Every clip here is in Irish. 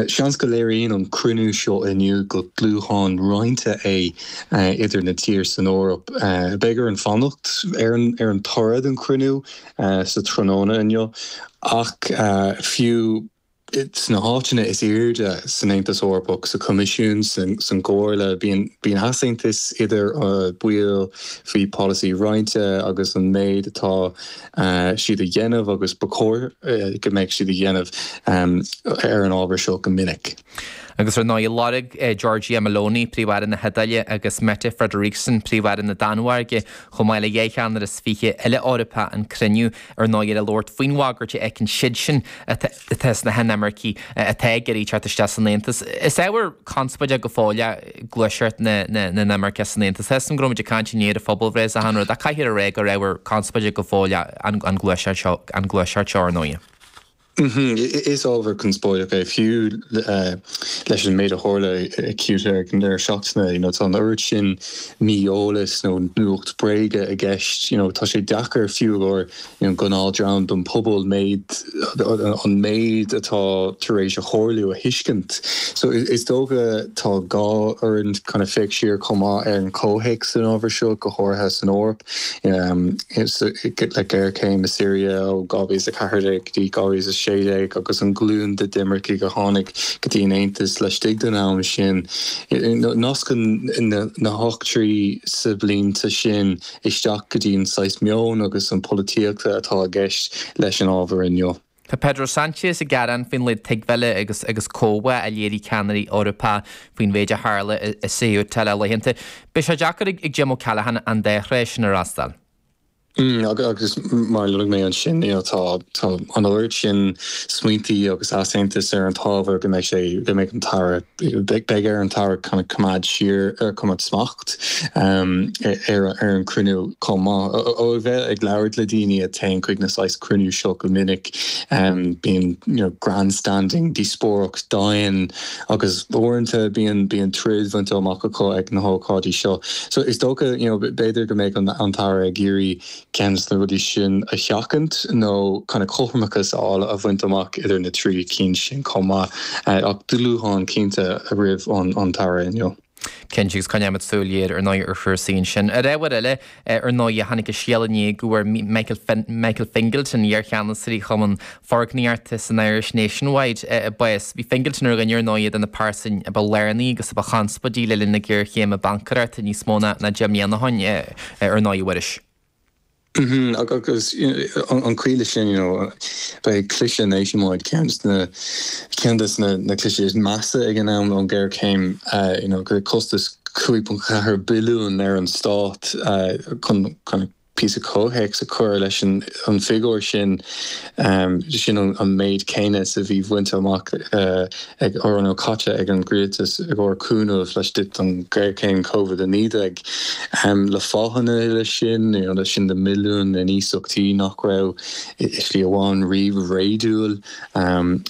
Seans go léiríonn an cruinniú seo inniu go dúshlán roinnte é idir na tír san Eoraip. Beidh orainn fanacht ar an toradh den chruinniú sa tráthnóna inniu ach fiú sna háiteanna is airde san Aontas Eorpach, sa Choimisiún, san gComhairle, bíonn easaontas idir baill faoi polasaí roinnte agus an méid atá siad a dhéanamh agus ba chóir go mbeadh siad a dhéanamh ar an ábhar seo go minic. Agus ar ndóigh, lorg Giorgia Meloni, Príomh-Aire na hIodáile, agus Mette Frederiksen, Príomh-Aire na Danmhairge, chomh maith le dhá cheannaire is fiche eile Eorpach an cruinniú ar ndóigh le labhairt faoin bhagairt a fheiceann siadsan atá atá sna hinimircigh atá ag iarraidh teacht isteach san Aontas. Is ábhar conspóide go fóill é gluaiseacht na n-inimirceach san Aontas. Tá a fhios agam go raibh muid ag caint inné ar an phobalbhreith is a tháinig, ach caithfear a rá gur ábhar conspóide go fóill é an gluaiseacht seo, ar ndóigh. Is ábhar conspóideach é, fiú leis an méid a tharla i Ceuta ag an deireadh seachtaine. Tá an oiread sin mí-eolais nó nuacht bréige i gceist. You know, tá sé deacair, fiú, go don gnáth-dream den phobal méid an méid atá tar éis a tharlú a thuiscint. So is dócha tá gá orainn kind of féach siar chomh maith ar an chomhthéacs san ábhar seo, go háirithe san Eoraip. Le géarchéim i Siria ó 2014 go dtí 2016 agus an glúin de d'imircigh a tháinig go dtí an Aontas laistigh den am sin, nascann na heachtraí sa bhlianta sin, isteach go dtí an saghas meoin agus an pholaitíochta atá i gceist leis an ábhar inniu. Tá Pedro Sanchez ag gearán faoin laghad tuigbheála agus agus comhbhá a léirigh ceannairí Eorpacha faoin mhéid a tharla i Ceuta le laethanta. Beidh sé deacair ag Jim O'Callaghan an dá thréith sin a fhreastal. Agus mar a luaigh mé ansin, tá an oiread sin smaointí agus easaontas ar an t-ábhar go mbeidh sé, go mbeidh an t-aire, beidh ar an t-aire kind of coimeád siar, coimeád smacht ar an chruinniú chomh maith. Ó bheith ag labhairt le daoine a théann chuig na saghas cruinniú seo go minic, bíonn grandstanding, díospóireacht domhain agus uaireanta bíonn troid bhainte amach acu ag na hócáidí seo. So is dócha, you know, b'fhéidir go mbeidh an tAire ag iarraidh ceann de na rudaí sin a sheachaint nó kind of cothramachas a fháil, a bhaint amach idir na trí cinn sin chomh maith. Ach dúshlán cinnte roimh an tAire inniu. Cinnte agus coinneoidh muid súil ghéar ar ndóigh ar chúrsaí ansin. Ar ábhar eile, ar ndóigh, tháinig an scéala inné go bhfuair Michael Fingleton, iarcheannasaí Chumann Foirgníochta san Irish Nationwide, bás. Bhí Fingleton ar dhuine ar ndóigh de na pearsain a ba lárnaí agus a ba chonspóidí le linn na géarchéime baincéireachta níos mó ná deich mbliana ó shoin, ar ndóigh, a Mhuiris. Agus an chaoi leis sin, b'é cliseadh Nationwide, ceann de na cliseadh is measa ag an am ón ghéarchéim, le costas 5.4 billiúin ar an Stát, chun píosa comhthéacs a chur leis an bhfigiúr sin, Sin an méid céanna is a bhí bhainte amach ag ár nó caite ag an gcomhrialtas i gcomhair cúnamh laistigh den ghéarchéim Covid-19. Le fáthanna leis sin, leis sin na milliúin in iasachtaí nach raibh i slí amháin riamh réadúil,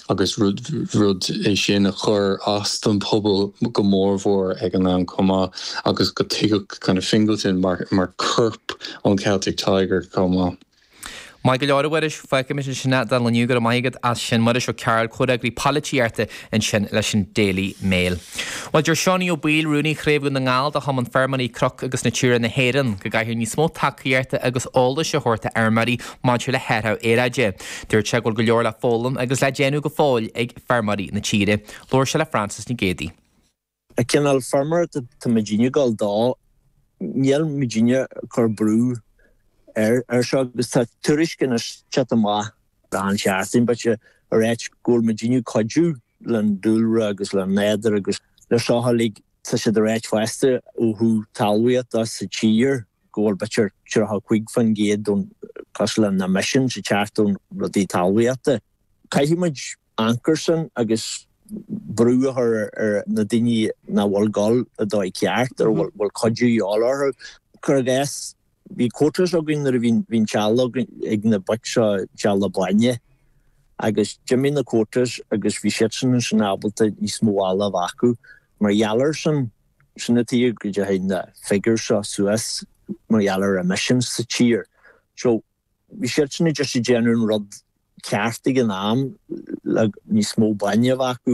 agus rud é sin a chuir as don bpobal go mór mhór ag an am chomh maith, agus go dtuigeadh Fingleton mar corp ón Celtic Tiger chomh maith. Maith go leor, a Mhuiris. Fágaimis ansin é don lá inniu, go raibh maith agat as sin. Muiris Ó Cearbhaill, Comhfhreagraí Poilitíochta ansin leis an Daily Mail. Bhuel, deir Seánie Ó Baoill, Rúnaí Chraobh Dhún na nGall de Chumann Feirmeoirí Cnoc agus Natura na hÉireann, go gcaithfear níos mó tacaíochta agus eolais a thabhairt d'fheirmeoirí maidir le hathrach aeráide. Dúirt sé go bhfuil go leor le foghlaim agus le déanamh go fóill ag feirmeoirí na tíre. Labhair sé le Frances Nic Géadaigh. An cineál feirmeoireacht atá muidinne ag gabháil dó. Níl muidinne ag cur brú air seo agus tá tuairisc anois ag teacht amach, gan cheart aon bhaill a ráit, go bhfuil muidinne ag cuidiú leis an dúlra agus leis an nádúr agus leis seo uilig tá siad a ráit fosta ó thaobh talmhaíochta sa tír go bhfuil b'fhéidir 35% den, cosúil le na emissions, ag teacht ón rudaí talmhaíochta. Caithfidh muid amharc air sin agus brú a chur ar na daoine nach bhfuil ag dul a dóigh ceart a bhfuil cuidiú a dhíobháil orthu. Cuir i gcás, bhí quotas againn nuair a bhí an t-eallach ag na boic seo an t-eallach bainne agus d'imigh na quotas agus bhí siadsan ansin ábalta níos mó eallaigh a bheith acu. Mar gheall air sin, sin an tuige go dteachaidh na figures seo suas mar gheall ar emissions sa tír. So. Bhí siadsan ag déanamh an rud ceart ag an am le níos mó bainne a bheith acu.